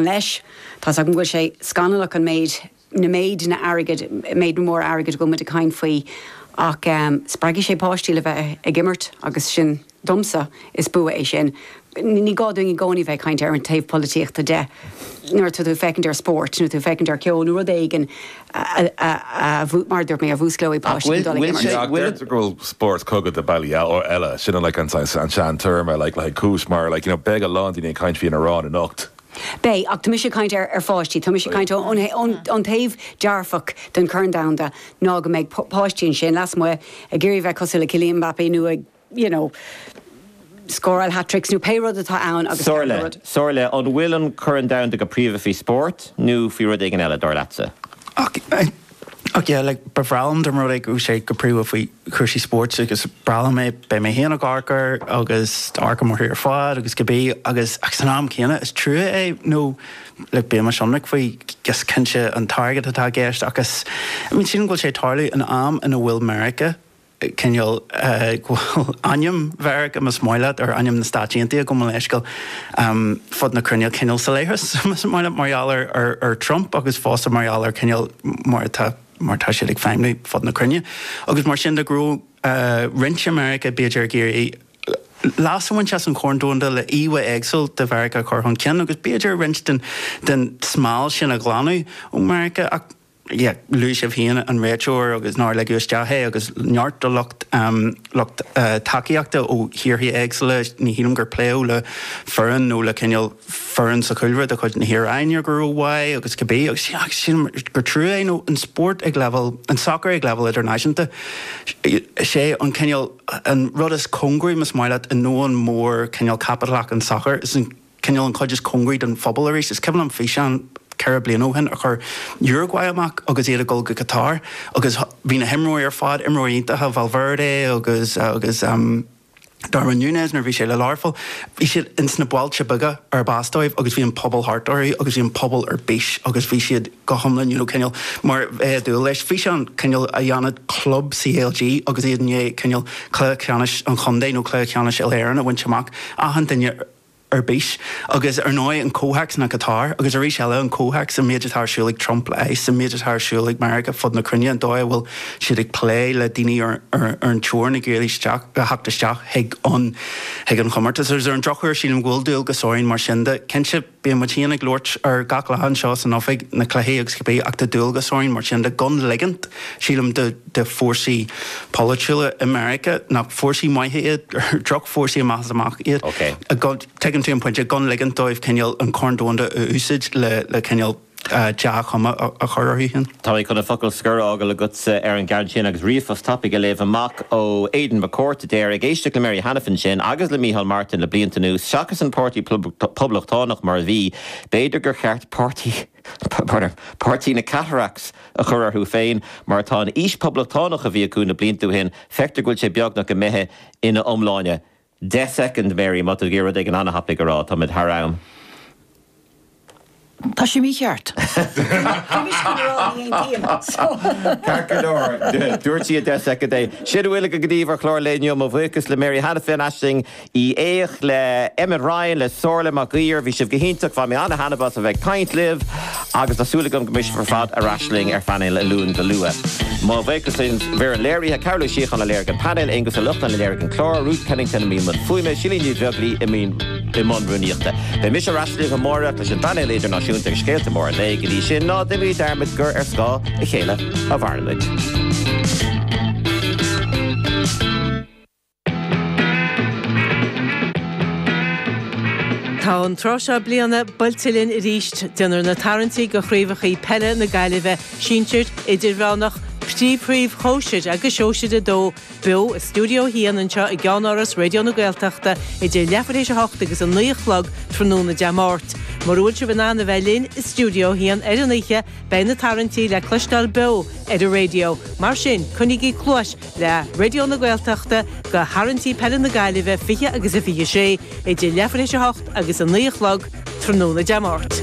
leis. Tá's agam go bhfuil sé scannalach an méid, na méideanna airgid, méideanna móra airgid a bhfuil muid ag caint faoi ach spreagfaidh sé páistí le bheith ag imirt agus sin, domsa, is bua é sin. Ní gá dúinn i gcónaí a bheith ag caint ar an taobh polaitíochta de nuair atá tú ag féachaint ar spórt nó tú ag féachaint ar cheol nó rud éigin. mar dúirt mé, a mhúsclóidh páistí chun dul ag imirt. Ach deirtear go bhfuil spórt cogadh de bhealaí eile, sin like an sean-téarma like le haghaidh cúis, mar like you know beidh a lán daoine ag caint faoi an Iaráin anocht. Beidh, ach tá mise ag caint ar pháistí, tá mise ag caint faoin taobh dearfach den Chorn Domhanda ná go mbeidh páistí ansin lasmuigh ag iarraidh a bheith cosúil le Kylian Mbappé nó ag. you know, scóráil hat-tricks nó pé rud atá ann agus ceann de Somhairle, rud. Somhairle, an bhfuil an Corn Domhanda go príomha faoi spórt nó faoi rud éigin eile, dar leatsa? Ach, ach yeah, like, ba bhreá liom dá mba rud é go raibh sé go príomha faoi chúrsaí spóirt agus is breá liom é, beidh mé féin ag amharc air agus ag amharc air ar fad agus go bí agus, ach san am céanna, is trua é nó like bímis ionraic faoi, agus cinnte an t-airgead atá i gceist ach is, I mean sílim go bhfuil sé ag tarlú in am ina bhfuil Meiriceá, cineál go bhfuil ainm Mheiriceá más maith leat ar ainm na Stáit Aontaithe gabh mo leithscéal fud na cruinne cineál salaithe is más maith leat mar gheall ar ar Trump agus fosta mar gheall ar cineál mar atá mar tá siad ag feidhmiú fud na cruinne agus mar sin de go raibh roinnt i Meiriceá b'fhéidir ag iarraidh leas a bhaint as an Chorn Domhanda le íomhá éagsúil de Mheiriceá a chur chun cinn agus b'fhéidir roinnt den den smál sin a ghlanadh ó Mheiriceá ach Luaigh sibh féin an réiteoir agus nár ligeadh isteach é agus neart de lucht lucht tacaíochta ó thíortha éagsúla, ní shílim gur pléadh le foireann nó le cineál foireann sa chúlra de chuid na hIaráine go rómhaith agus cibé agus sílim gur trua é nó an spórt ag leibhéal, an sacar ag leibhéal idirnáisiúnta, sé an cineál, an rud is cóngaraí más maith leat i ndomhan mór cineál caipitleach an tsacair, is é an. cineál an chuid is cóngaraí don phobal arís. Is cuimhin liom físeán ceithre bliana ó shin a chuir Uruguay amach agus iad ag dul go Qatar agus bhí na himreoirí ar fad, imreoirí iontacha, Valverde agus agus Darwin Núñez nuair a bhí sé le Learpholl, bhí siad ins na bailte beaga ar b'as dóibh agus bhí an pobal thart orthu agus bhí an pobal ar bís agus bhí siad go hiomlán, you know, cineál mar bheifeá ag dúil leis. Físeán cineál a dhéanfadh club CLG agus iad i ndiaidh cineál cluiche ceannais an chontae nó cluiche ceannais Uile-Éireann a bhaint amach, achan duine ar. ar bís. Agus ar ndóigh an comhthéacs ná Qatar. Agus arís eile an comhthéacs, an méid atá ar siúl ag Trump leis, an méid atá ar siúl ag Meiriceá fud na cruinne, an dóigh a bhfuil siad ag plé le daoine ar an teorainn ag iarraidh isteach, a theacht isteach chuig an, chuig an chomórtas. Agus ar an drochuair sílim go bhfuil dualgas orainn mar sin de, cinnte bíonn muid féin ag labhairt air gach lá anseo san oifig, na cluichí agus cibé ach tá dualgas orainn mar sin de gan ligint, sílim, do. de fórsaí polaitiúla i Meiriceá nach fórsaí maithe iad, gur droch-fhórsaí amach is amach iad. OK. Tuigeann tú an pointe, gan ligint dóibh cineál an Corn Domhanda a úsáid le cineál dea-chuma a chur orthu féin. Tá mé chun an focal scoir a fhágáil agatsa ar an gceann sin agus ríomhphost tapaidh a léamh amach ó Aidan McCourt a deir, Ag éisteacht le Mary Hanafin sin agus le Micheál Martin le blianta anuas, seachas an Páirtí Poblachtánach mar a bhí, b'fhéidir gur cheart Páirtí. na Cataracts a chur orthu féin, mar tá an fhís phoblachtánach a bhí acu na blianta ó shin, feictear go bhfuil sé beagnach imithe ina iomláine. Deich soicind, Mary, má tá tú ag iarraidh rud éigin ana-thapaidh a rá, táimid thar am. Tá sé mícheart. Bímis chun a rá, ní aontaím. Ceart go leor, dúirt sí i 10 soicind é. Sin a bhfuil againn daoibh ar chlár an lae inniu. Mo bhuíochas le Mary Hanafin, Aisling Ní Aodha, le Emmet Ryan le Somhairle Mac Uidhir. Bhí sibh go hiontach. Bhain mé an-thaitneamh as a bheith ag caint libh agus tá súil agam go mbeidh sibh ar fad ar ais linn ar phainéal an Luain go luath. Mo bhuíochas ar an léirithe, Cárthach Ó Síocháin a léirigh an painéal, Aonghus Ó Luachráin a léirigh an clár, Ruth Kennington i mbun fuaime, Silín Ní Bheaglaoi i mbun rúnaíochta. Beidh mise ar ais libh amáireach leis an bpainéal idirnáisiúnta agus scéalta móra an lae. Go dtí sin, ná deimíd dearmad gur ar scáth a chéile a mhairimid. Tá an tráth seo bliana buailte linn arís. Déanfar na tarraingtí do Chraobhachaí Peile na Gaillimhe, Sinsir, Idirmheánach, Príomhchraobh Shóisir agus Sóisir 2, beo i stiúideo a haon anseo i gCeannáras Raidió na Gaeltachta idir leath tar éis a hocht agus a naoi a chlog tráthnóna Dé Máirt. Mura bhfuil sibh in ann a bheith linn i stiúideo a haon ar an oíche, beidh na tarraingtí le cloisteáil beo ar an raidió, mar sin, coinnígí cluais, le Raidió na Gaeltachta do tharraingtí peile na Gaillimhe 20 26 idir leathuair théis a hocht agus a naoi a chlog tráthnóna Dé Máirt.